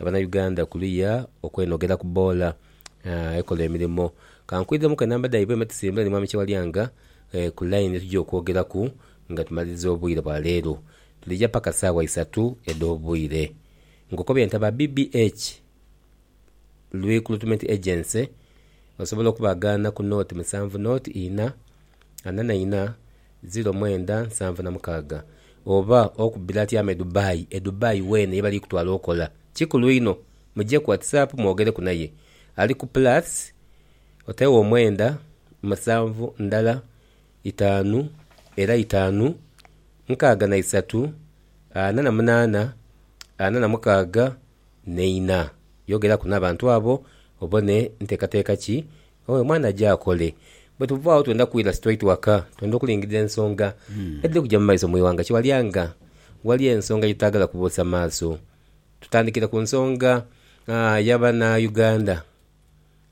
Abana Uganda kuliya okwenogera ku boola ekola emirimo. Kankwiiremuku enamba dhaibwe me tusimbule ni Mwami Kyewalyanga ku line ye tugya okwogeraku nga tumaliriza obwire bwa leero. Tuliya paka saawa isatu edh'obwire. Nkoko bye ntaba BBH Rwicruitment Agency osobola okubagaana ku nooti musanvu nooti ina ana na ina Ziro mwenda nsanvu na mukaaga. Oba okubira ati ama edubai edubai wena yebali kutwala okola kikulu inho muje ku whatsapp mwogereku naye ali ku plus otegho omwenda musanvu ndala itaanu era itaanu nkaaga na isatu ana na munaana ana na mukaaga neina yogeraku nabantu abo obone ntekateka ki Oyo mwana aje akole. Bwe tuva agho twenda kwidha straight waka. Twenda okulingirira ensonga edhiri kuja mu maiso mu ighanga. Kiwalya nga waliyo ensonga gyetutaagala kuboosa maaso. Tutandikire ku nsonga ya bana Uganda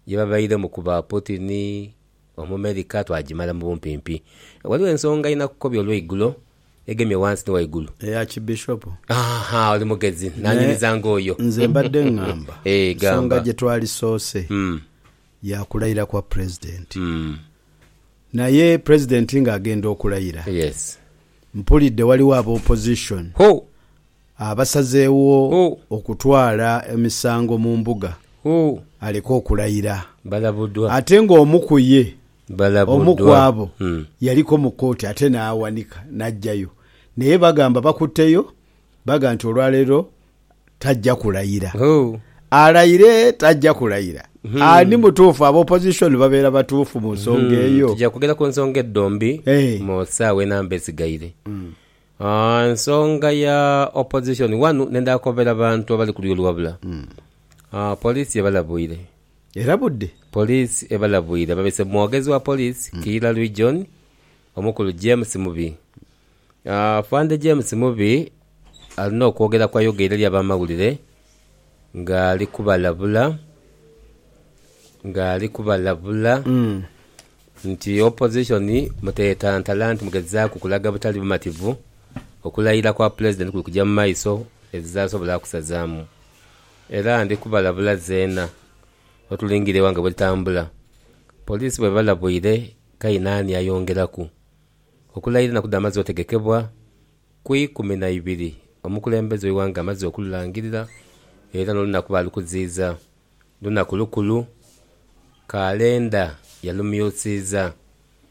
gye babairemu ku ba Putin, Omumerika, twagimala mu bumpimpi. Waliwo ensonga einakukobi olweigulo egemye wansi ni waigulu. Eya kibishopu. Aha, oli mugezi. Naanyumiza ng'oyo. Nze mbadde ngamba nsonga gye twali soose ya kulayira kwa Pulezidenti. Naye Pulezidenti ng'agenda okulayira, mpulidde waliwo aba Opposition abasazeewo okutwala emisango mu mbuga aleke okulayira. Ate ng'omu ku ye Omu ku balabuddwa. abo Mm. yaliko mu kooti ate n'awanika n'aggyayo naye bagamba bakutteyo baga nti olwaleero tajja kulayira. Hoo. Alayire tajja kulayira? Ani mutuufu? Aba opposition babeera batuufu mu nsonga eyo? Tugya kwogera ku nsonga edhombi Eh. mu saawa enamba esigaire. Ah, ensonga ya opposition wanu nendha kobera bantu abali ku lulyo oluwabula. Ah, police ebalabwire. era budde. Poliisi ebalabwire ababese Mwogezi wa poliisi Kiira Region omukulu James Mubi. Afande James Mubi alina okwogera kwayogeire eri abamawulire nga ali kubalabula nga ali kubalabula nti opposition mutetantala nti mugezaaku kulaga butali bumativu okulayira kwa pulezidenti kuli kugya mu maiso ebizasobola kusazamu Era ndi kubalabula zeena otulingirire eghanga bwe litambula. Poliisi bw'ebalabwire kainaani ayongeraku, Okulaira enaku dh'amazzi otegekebwa ku ikumi na ibiri omukulembeze w'eighanga amaze okululangirira era n'olunaku baalukuziiza lunaku lukulu, Kaalenda yalumyusiiza.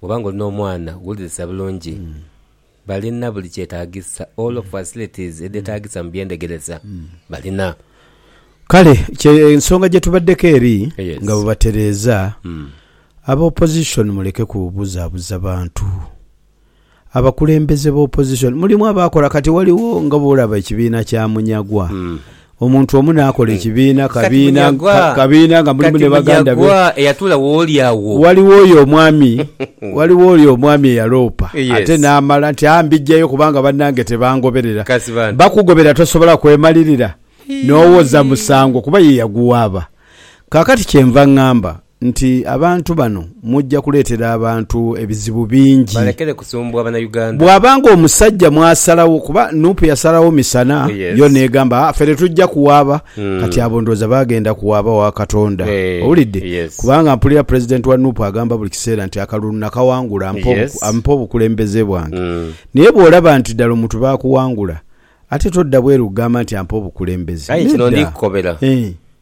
Bwoba nga oli n'omwana wulirisa bulungi, balina buli kyetagisa, all of facilities edhetagisa mu byendhegeresa balina. Kale kye nsonga gye tubaddeko eri nga bwe batereeza. Aba opposition muleke kubuzabuza bantu. abakulembeze ba opposition mulimu abaakola kati ghaligho nga bw'olaba ekibiina kya Munyagwa omuntu omu n'akola ekibiina kabiina kabiina nga mulimu ne baganda be ghaligho oyo omwami ghaligho oyo omwami eyaloopa ate n'amala nti aa mbiggyayo kubanga bannange tebangoberera bakugobera tosobola kwemalirira n'owoza musango kuba ye yaguwaaba kaakati kyenva ngamba nti abantu bano mujja kuleetera abantu ebizibu bingi. Balekere kusumbwa banauganda. Bwaba nga omusajja mwasalawo kuba nup yasalawo misana yo negamba a fere tujja kuwaaba kati abo ndowooza bagenda kuwaaba wa katonda owulidde kubanga mpulira president wa nup agamba buli kiseera nti akalulu nakawangula ampe obukulembeze bwange naye bwolaba nti ddala omuntu bakuwangula ate todda bweru kugamba nti ampe obukulembeze nedda.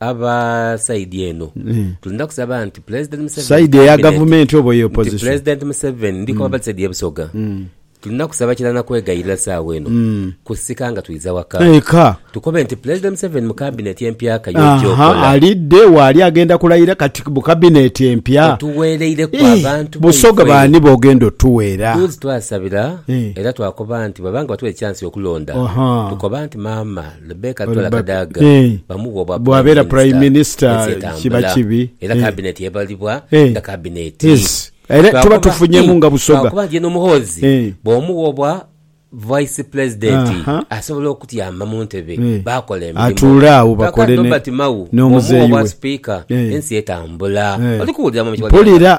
Aba side eno tulina kusaba nti Pulezidenti Museveni Side eya gavumenti oba eya opposition? Nti Pulezidenti Museveni ndi kwabadha side ye Busoga tulina kusaba kila na kwegayirira saawa eno kusika nga twiza waka Eka. tukobe nti Pulezidenti Museveni mu kabineti empya kaye ojja okola. Ahaa alidde wa ali agenda kulayira kati mu kabineti empya? Otuweereire ku abantu baife. Busoga baani bogenda otuweera? Duuzi twasabira era twakoba nti bwebanga batuwa ekyansi okulonda tukoba nti maama Rebecca Tola Kadaga bamugha obwa Prime Minister bw'ensi etambula era Kabineti ebalibwa nga Kabineti. Lwakuba nti ye n'Omuhoozi bw'omugha obwa Vice President asobola okutyama mu ntebe baakola emirimu. Rebecca Nobert Mao bw'omugha obwa Sipiika ensi etambula. Oli kuwulira Mummy Kyagulanyi?